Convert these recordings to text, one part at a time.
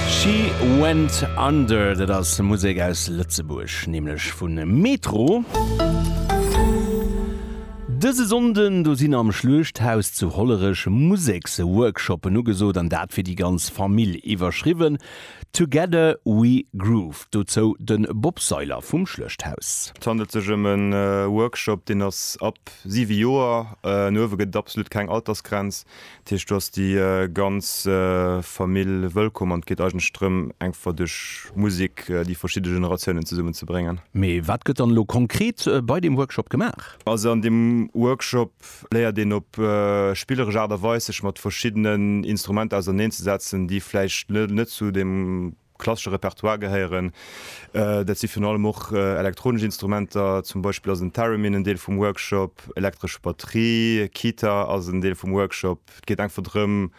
She Went Under, dat ass Musek aus Lëtzebuerg, nämlech vu Metro. Dëse Sonnden, do sinn am Schluechthaus zu Hollerech Museksworkshoppen ugesot an dat fir déi ganz Famill. Iwwerschriwwen, Together we groove. Dozou de Bob Seiler vum Schluechthaus. Et handelt sech ëm e Workshop, deen ass ab siwe Joer an uewe, gëtt et absolut keng Altersgrenz. Dat heescht, do ass déi ganz Famill wëllkomm an et geet eigentlech drëm, engfer duerch Musek déi verschidde Generatiounen zesummen ze bréngen. Mee wat gëtt dann elo konkret bei deem Workshop gemaach? Also an deem Workshop léiert een op spilleresch Aart a Weis sech mat verschiddenen Instrumenter auserneen ze setzen, déi vläicht net zu deem klassesche Repertoire gehéieren. Dat si virun allem och elektronesch Instrumenter, zum Beispill ass en Theremin en Deel vum Workshop, elektresch Batterie, Kitar ass en Deel vum Workshop. Et geet einfach drëm,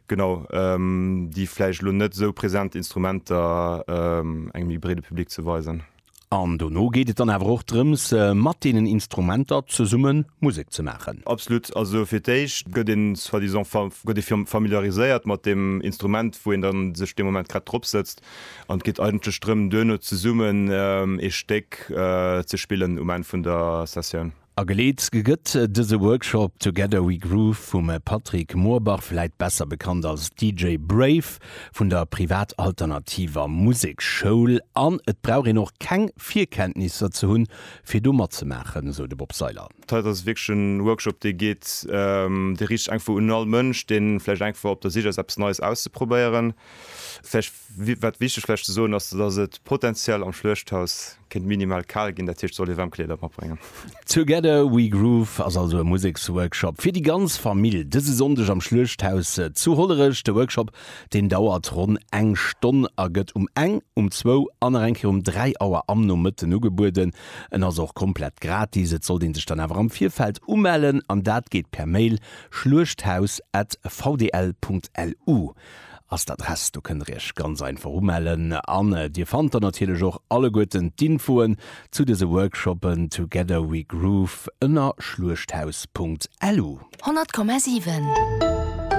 genau déi vläicht elo net esou present Instrumenter engem méi breede Public ze weisen. An dono geet et dann awer och drëms, mat deenen Instrumenter zesumme Musek ze maachen. Absolut. Also fir d'éischt gëtt een soi-disant fa-, gëtt ee familiariséiert mat deem Instrument, wou een da sech dee Moment grad drop sëtzt. An et geet eigentlech drëm, duerno zesummen ee Stéck ze spillen um Enn vun der Sessioun. Ageleet gëtt dëse Workshop Together We Groove vum Patrick Moorbach, vläit besser bekannt als DJ Brave, vun der Privat Alternativer Musekschoul. An et brauch een och keng Virkenntnisser ze hunn, fir do matzemaachen, esou de Bob Seiler. D'Heit ass wierklech e Workshop, dee geet, dee riicht sech einfach un all Mënsch, dee vläicht einfach op der Sich ass, eppes Neies auszeprobéieren. Vläicht Wat wichteg vläicht ze soen ass, dass et potenziell am Schluechthaus kéint minimal kal ginn, dat heescht, soll ee waarm Kleeder matbréngen. Together We Groove ass also e Museksworkshop fir déi ganz Famill dëse Sonndeg am Schluechthaus zu Hollerech. De Workshop, deen dauert ronn eng Stonn a gëtt um eng, um zwou an nach eng Kéier um dräi Auer am Nomëtten ugebueden. En ass och komplett gratis. Et sollt ee sech dann awer am Virfeld umellen an dat geet per Mail schluechthaus at vdl Punkt lu. ass d'Adress. Do kënnt der iech ganz einfach umellen an dir fannt dann natierlech och alleguerten d'Infoen zu dëse Workshoppen Together We Groove ënner schluechthaus.lu. 100,7.